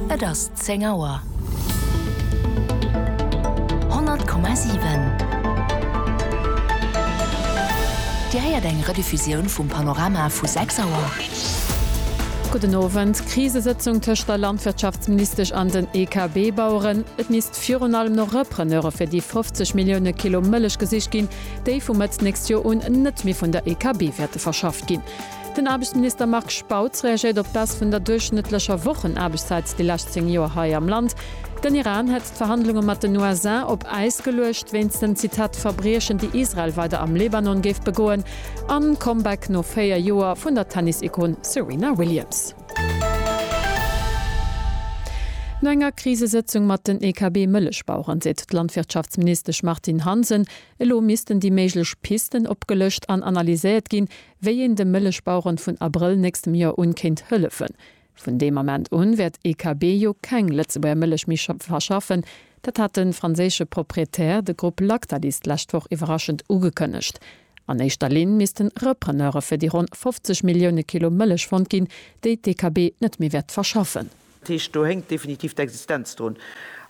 Et ass zéng Auer. 100,7 Dir héiert eng Rediffusioun vum Panorama vu 6 Auer. Gudden Owend. Krisesëtzung tëscht der Landwirtschaftsministesch an den EKB-Baueren. Et misst virun allem no Repreneure fir déi 50 Millioune Kilo Mëllech gesicht ginn, déi vu Mëtt d'nächst Joer un net méi vun der EKB wäerte verschafft ginn. Den Aarbechtsminister Marc Spautz reagéiert op d'Baisse vun der duerchschnëttlecher Wochenaarbechtszäit déi lescht 10 Joer hei am Land. Den Iran hätt d'Verhandlunge mat den USA op Äis geluecht wéinst den, Zitat, Verbriechen déi Israel weider am Libanon géif begoen. An Comeback no 4 Joer vun der Tennis-Ikon Serena Williams. No enger Krisesëtzung mat den EKB-Mëllechbaueren seet d'Landwirtschaftsministesch Martine Hansen, elo missten déi méiglech Pisten opgelëscht an analyséiert ginn, wéi een de Mëllechbaueren vun Abrëll nächstem Joer un kéint hëllefen. Vun deem Ament un wäert EKB jo keng Lëtzebuerger Mëllech méi verschaffen. Dat hat de franséische Proprietär, de Grupp Lactalis, d'lescht Woch iwwerraschend ugekënnegt. An éischter Linn missten Repreneure fir déi ronn 50 Millioune Kilo Mëllech fonnt ginn, déi d'EKB net méi wäert verschaffen. Dat heescht, do hänkt definitiv d'Existenz drun.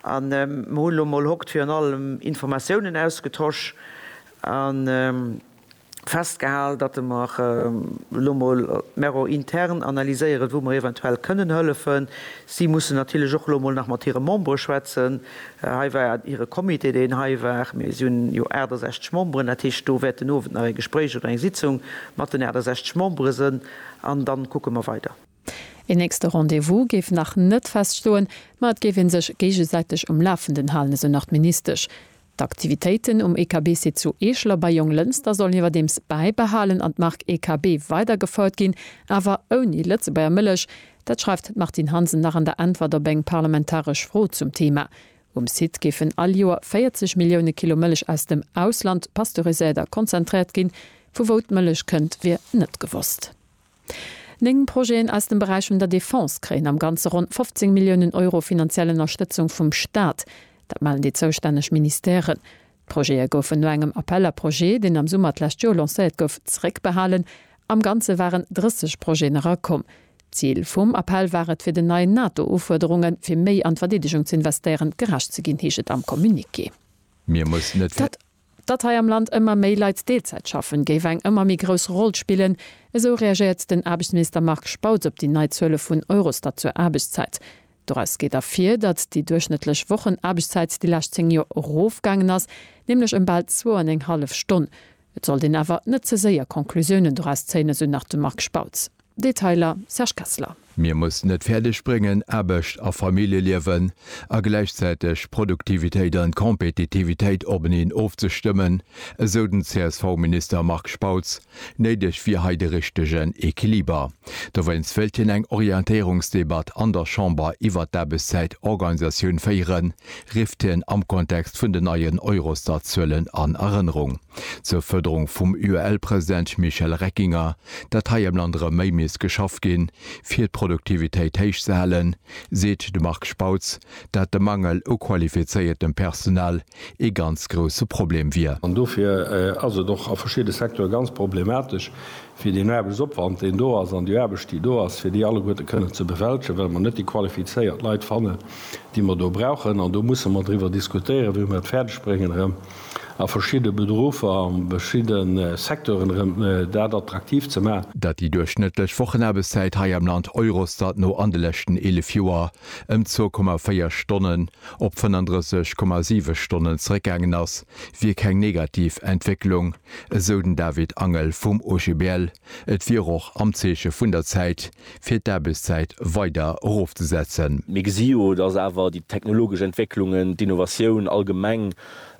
A mer hunn elo mol hokt virun allem Informatiounen ausgetosch. festgehal, datte mer elo emol mero intern analyséieren, wou mer eventuell kënnen hëllefen. Si mussen natierlech och elo emol nach mat hire Membere schwätzen. Hei war hire Comité, deen hei war. Mir si hunn jo 68 Memberen, dat heescht, do wäert den Owend nach e Gespréich oder eng Sitzung mat den 68 Membere sënn an da kucke mer weider. Een nächste Rendez-vous géif nach net feststoen, ma et géif ee sech géigesäiteg um Lafenden halen, esou nach d'Ministesch. D'Aktivitéiten um EKBC zu Eeschler bei Jonglënster sollen iwwerdeems bäibehalen an d'Mark EKB weider gefouert ginn, awer ouni Lëtzebuerger Mëllech. Dat schreift d'Martine Hansen nach an der Äntwert op eng parlamentaresch Fro zum Theema. Um Site géifen all Joer 40 Millioune Kilo Mëllech aus dem Ausland pasteuriséiert a konzentréiert ginn. Vu wou d'Mëllech kënnt, wier net gewosst. Néng Projeten aus dem Beräich vun der Defense kréien am Ganze ronn 15 Milliounen Euro finanziell Ënnerstëtzung vum Staat. Dat mellen déi zoustänneg Ministèren. D'Projete goufen no engem Appel à projets, deen am Summer d'lescht Joer lancéiert gouf, zeréckbehalen. Am Ganze waren 30 Projeten erakomm. D'Zil vum Appell war et, fir den neien NATO-Ufuerderunge fir méi an d'Verdeedegung ze investéieren, gerecht ze ginn, heescht et am Communiqué. Mir mussen et. Datt hei am Land ëmmer méi Leit Deelzäit schaffen, géif eng ëmmer méi grouss Roll spillen, esou reagéiert den Aarbechtsminister Marc Spautz op déi nei Zuele vun Eurostat zur Aarbechtszäit. Doraus geet ervir, datt déi duerchschnëttlech Wochenaarbechtszäit déi lescht 10 Joer erofgaangen ass, nämlech ëm bal zwou an eng hallef Stonn. Et sollt een awer net ze séier Conclusiounen doraus zéien, esou nach de Marc Spautz. Detailer, Serge Kessler. Mir mussen et fäerdeg bréngen, Aarbecht a Familljeliewen a gläichzäiteg Produktivitéit an Kompetitivitéit openeen ofzestëmmen, esou den CSV-Minister Marc Spautz. Néideg wier hei de richtegen Equiliber. Dowéinst wéilt hien eng Orientéierungsdebatt an der Chamber iwwert d'Aarbechtszäitorganisatioun féieren, rifft hien am Kontext vun den neien Eurostat-Zuelen an Erënnerung. Zur Fuerderung vum UEL-President Michel Reckinger datt hei am Land erëm méi misst geschafft ginn, fir d'Produktivitéit héich ze halen, seet de Marc Spautz, dat de Mangel u qualifizéiertem Personal ee ganz grousse Problem wier. An dofir ass et och a verschidde Secteure ganz problematesch, fir deen Aarbechtsopwand, deen do ass, an déi Aarbecht, déi do ass, fir déi alleguerte kënnen ze bewältegen, well mer net déi qualifizéiert Leit fannen, déi mer do brauchen. An do musse mer driwwer diskutéieren, wéi mer et fäerdegbréngen, erëm A verschidde Beruffer, a verschidde Secteuren erëm, dat attraktiv ze maachen. Datt déi duerchschnëttlech Wochenaarbechtszäit hei am Land Eurostat no an de leschten 11 Joer ëm 2,4 Stonnen op 35,7 Stonnen zeréckgaangen ass, wier keng negativ Entwécklung, esou den David Angel vum OGBL. Et wier och am Zeeche vun der Zäit, fir d'Aarbechtszäit weider erofzesetzen. Mir gesi jo, dass awer déi technologesch Entwécklungen, d'Innovatioun allgemeng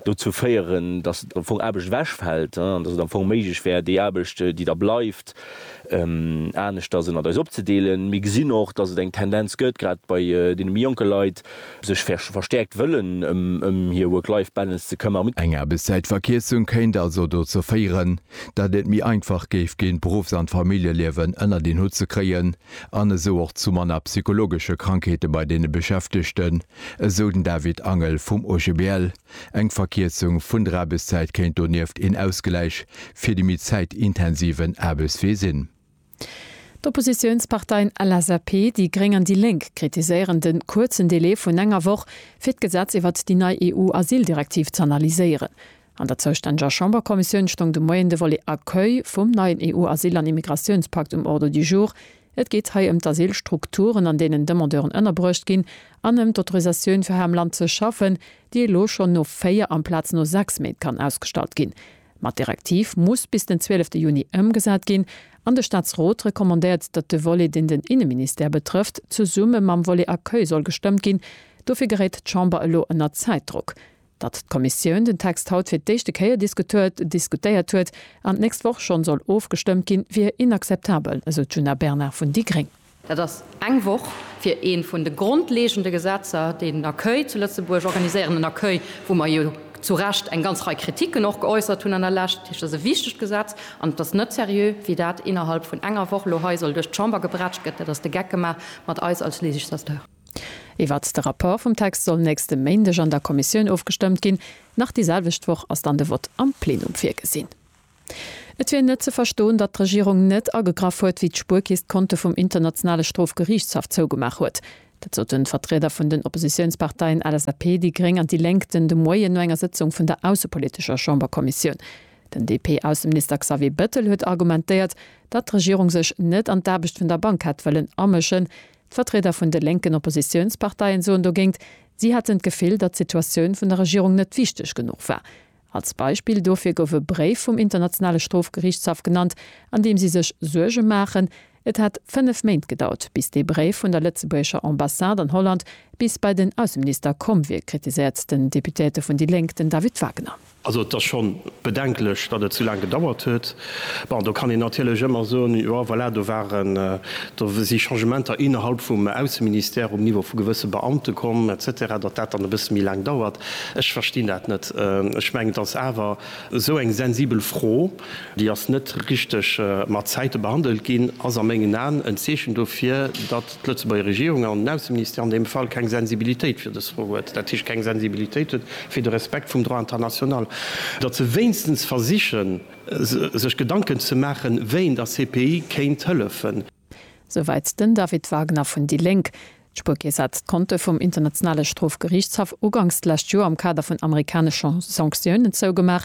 dozou féieren, dass am Fong Aarbecht ewechfält an dass et am Fong méiglech wär, déi Aarbecht, déi da bleift, aneschters ënnert eis opzedeelen. Mir gesinn och, dass et eng Tendenz gëtt, grad bei deene méi jonke Leit, sech verstäerkt wëllen ëm hir Work-Life-Balance ze këmmern. Eng Aarbechtszäitverkierzung kéint also dozou féieren, datt et méi einfach géif ginn, d'Beruffs an d'Familljeliewen ënnert een Hutt ze kréien an esou och zu manner psychologesche Krankheete bei deene Beschäftegten, esou den David Angel vum OGBL. Eng Verkierzung vun der Aarbechtszäit kéint donieft een Ausgläich fir déi méi zäitintensiven Aarbechtswee sinn. D'Oppositiounsparteien LSAP, déi gréng an déi lénk kritiséieren de kuerzen Delai vun enger Woch, fir d'Gesetz iwwert déi nei EU-Asyldirektiv z'analyséieren. An der zoustänneger Chamberkommissioun stoung de Moien de Volet Accueil vum neien EU-Asyl an Immigratiounspakt um Ordre du jour. Et geet hei ëm d'Asylstrukturen, an deenen Demandeuren ënnerbruecht ginn, an ëm d'Autorisatioun, fir hei am Land ze schaffen, déi elo schonn no véier amplaz no sechs Méint kann ausgestallt ginn. Ma d'Direktiv muss bis den 12 Juni ëmgesat ginn an de Staatsrot recommandéiert, datt de Volet, deen den Inneministère betrëfft, zesumme mam Volet Accueil soll gestëmmt ginn. Dofir geréit d'Chamber elo ënner Zäitdrock. Datt d'Kommissioun den Text haut fir d'éischte Kéier diskutéiert huet an d'nächst Woch schonn soll ofgestëmmt ginn, wier inakzeptabel, esou d'Djuna Bernard vun déi gréng. Dat ass eng Woch fir eent vun de grondlegende Gesetzer, déi den Accueil zu Lëtzebuerg organiséieren. En Accueil, wou mer jo zu Recht eng ganz Rei Kritiken och geäussert hunn an der Lescht. Dat heescht, et ass e wichtegt Gesetz an et ass net seriö, wéi dat innerhalb vun enger Woch elo hei soll duerch d'Chamber gebrätscht gëtt. Dat ass de Geck gemaach mat eis als Législateur. Iwwert de Rapport vum Text soll nächste Méindeg an der Kommissioun ofgestëmmt ginn. Nach déi selwecht Woch ass dann de Vott am Plenum virgesinn. Et wier net ze verstoen, datt d'Regierung net agegraff huet, wéi d'Spuerkist d'Konte vum Internationale Strofgeriichtshaff zougemaach huet. Dat soten d'Vertrieder vun den Oppositiounsparteien LSAP, déi gréng an déi Lénk den de Moien no enger Sëtzung vun der aussepolitescher Chamberkommissioun. Den DP-Ausseminister Xavier Bettel huet argumentéiert, datt d'Regierung sech net an d'Aarbecht vun der Bank hätt wëllen amëschen. D'Vertrieder vun de lénken Oppositiounsparteien soen dogéint, si hätten d'Gefill, datt d'Situatioun vun der Regierung net wichteg genuch war. Als Beispill dofir gouf e Bréif vum Internationale Strofgerichtshaff genannt, an deem si sech Suerge maachen, Et hätt fënnef Méint gedauert, bis dee Bréif vun der lëtzebuergescher Ambassade an Holland bis bei den Ausseminister komm wier, kritiséiert den Deputéierte vun déi Lénk, den David Wagner. Also et ass scho bedenklech, datt et sou laang gedauert huet. Bon, do kann een natierlech ëmmer soen, jo voilà, do waren, do si Changementer innerhalb vum Ausseministère um Niveau vu gewësse Beamte komm et cetera, datt dat dann e bësse méi laang dauert. Ech verstinn dat net. Ech mengen, et ass awer esou eng sensibel Fro, déi ass net richteg mat Zäite behandelt ginn, ass a mengen Aen en Zeechen dofir, datt, d'Lëtzebuerger Regierung an den Ausseministère an deem Fall keng Sensibilitéit fir dës Fro huet, dat heescht keng Sensibilitéit huet fir de Respekt vum Droit international, datt se wéinstens versichen sech Gedanken ze maachen, wéi een der CPI kéint hëllefen. Souwäit den David Wagner vun déi Lénk. D'Spuerkeess hat d'Konte vum Internationale Strofgeriichtshaff uganks d'lescht Joer am Kader vun amerikanesche Sanktiounen zougemaach.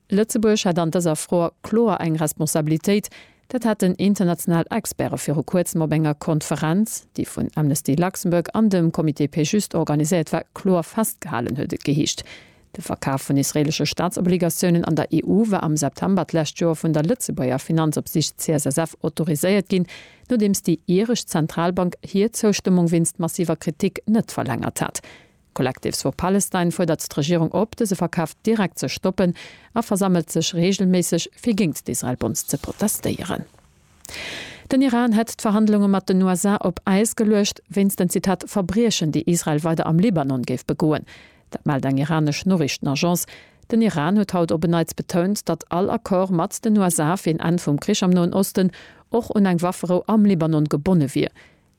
Lëtzebuerg hätt an dëser Fro kloer eng Responsabilitéit. Dat haten international Experte viru kuerzem op enger Konferenz, déi vun Amnesty Luxembourg an dem Comité Pay Juste organiséiert war, kloer festgehalen, huet et geheescht. De Verkaf vun israelesche Staatsobligatiounen an der EU war am September d'lescht Joer vun der Lëtzebuerger Finanzopsicht CSSF autoriséiert ginn, nodeems déi iresch Zentralbank hir Zoustëmmung wéinst massiver Kritik net verlängert hat. Collectives for Palestine fuerdert d'Regierung op, dëse Verkaf direkt ze stoppen a versammelt sech reegelméisseg, fir géingt d'Israel-Bombs ze protestéieren. Den Iran hätt d'Verhandlunge mat den USA op Äis geluecht, wéinst den, Zitat, Verbriechen, déi Israel weider am Libanon géif begoen. Dat mellt eng iranesch Noriichtenagence. Den Iran huet haut op en Neits betount, datt all Accord mat den USA fir en Enn vum Krich am Noen Osten och un eng Wafferou am Libanon gebonne wier.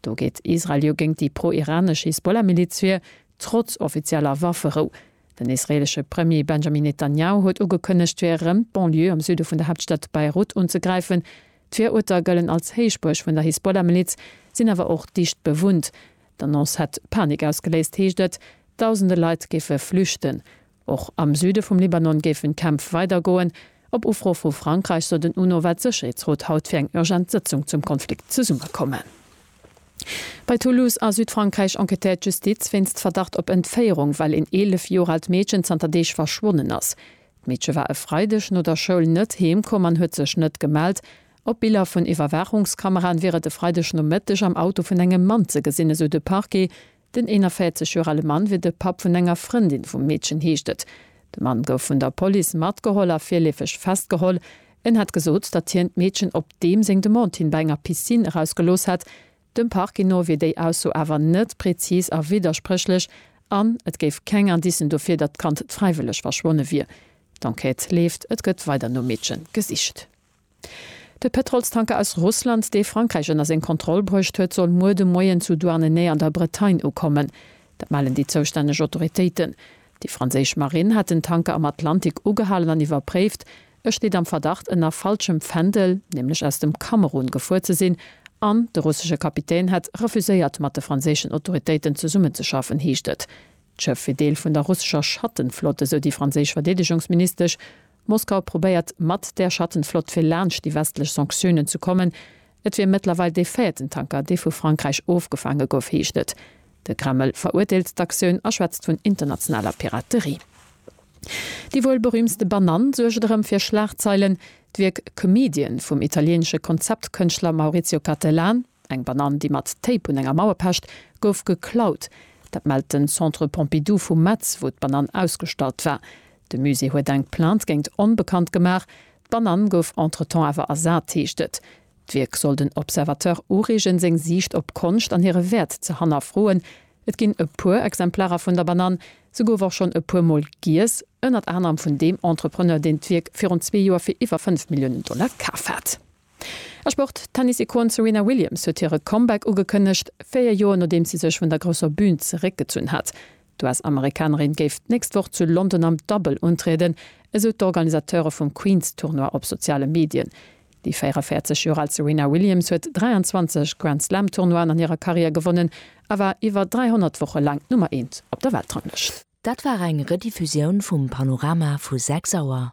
Do geet Israel jo géint déi pro-iranesch Hisbollah-Miliz vir, trotz offizieller Wafferou. Den israeelesche Premier Benjamin Netanjahu huet ugekënnegt, fir erëm d'Banlieue am Süde vun der Haaptstad Beirut unzegräifen. D'Viruerter gëllen als Héichbuerg vun der Hisbollah-Miliz, sinn awer och dicht bewunnt. D'Annonce hätt Panik ausgeléist, heescht et. Dausende Leit géife flüchten. Och am Süde vum Libanon géifen d'Kämpf weidergoen. Op Ufro vu Frankräich sot en UNO-Wert Sécherheetsrot haut fir eng urgent Sëtzung zum Konflikt zesummekommen. Bei Toulouse a Südfrankräich enquêtéiert d'Justiz wéinst Verdacht op Entféierung, well een 11 Joer aalt Meedchen zanter Deeg verschwonnen ass. D'Meedche war e Freideg no der Schoul net heem komm an huet sech net gemellt. Op Biller vun Iwwerwaachungskameraen wier et e Freideg Nomëtteg am Auto vun engem Mann ze gesinn, esou de Parquet. Den 41 Joer ale Mann wier de Papp vun enger Frëndin vum Meedchen, heescht et. De Mann gouf vun der Police matgeholl a virleefeg festgeholl. En hätt gesot, datt hien d'Meedchen op deem seng Demande hin bei enger Piscine erausgelooss hätt. Dem Parquet no wier déi Ausso awer net prezis a widderspréchlech an et géif keng Indicen dofir, datt d'Kand fräiwëlleg verschwonne wier. D'Enquête leeft, et gëtt weider nom Meedche gesicht. De Pëtrolstanker aus Russland, dee Frankräich ënner seng Kontroll bruecht huet, soll muer de Moien zu Douarnenez an der Bretagne ukommen. Dat mellen déi zoustänneg Autoritéiten. Déi franséisch Marinn hat den Tanker am Atlantik ugehalen an iwwerpréift. E steet am Verdacht, ënner falschem Fändel, nämlech aus dem Kamerun, gefuer ze sinn an de russesche Kapitän hätt refuséiert, mat de franséischen Autoritéiten zesummenzeschaffen, heescht et. D'Schëff wier Deel vun der russescher Schattenflott, esou déi franséisch Verdeedegungsministesch. Moskau probéiert, mat där Schattenflott fir laanscht déi westlech Sanktiounen ze kommen. Et wier mëttlerweil dee véierten Tanker, dee vu Frankräich ofgefaange gouf, heescht et. De Kreml verurteelt d'Aktioun a schwätzt vun internationaler Piraterie. Déi wuel berüümtste Banann suergt erëm fir Schlagzeilen. D'Wierk Comedian vum italieenesche Konzeptkënschtler Maurizio Cattelan, Eng Banann, déi mat Tape un enger Mauer pecht, gouf geklaut. Dat mellt den Centre Pompidou vu Metz, wou d'Banann ausgestallt war. De Musée huet eng Plainte géint Onbekannt gemaach. D'Banann gouf entretemps awer ersat, heescht et. D'Wierk soll den Observateur ureegen, seng Siicht op Konscht an hire Wäert ze hannerfroen. Et ginn e puer Exemplarer vun der Banann. Se gouf och schonn e puer Mol giess, ënnert anerem vun deem Entrepreneur, deen d'Wierk virun zwee Joer fir iwwer 5 Milliounen Dollar kaf hat. A Sport, D'Tennis-Ikon Serena Williams huet hire Comeback ugekënnegt, véier Joer nodeems si sech vun der grousser Bün zeréckgezunn hat. D'US-Amerikanerin géif d'nächst Woch zu London am Dabbel untrieden, esou d'Organisateure vum Queens-Tournoi op soziale Medien. Déi 44 Joer al Serena Williams huet 23 Grand-Slam-Tournoien an hirer Karriär gewonnen a war iwwer 300 Woche laang d'Nummer eent op der Weltranglëscht. Dat war eng Rediffusioun vum Panorama vu 6 Auer.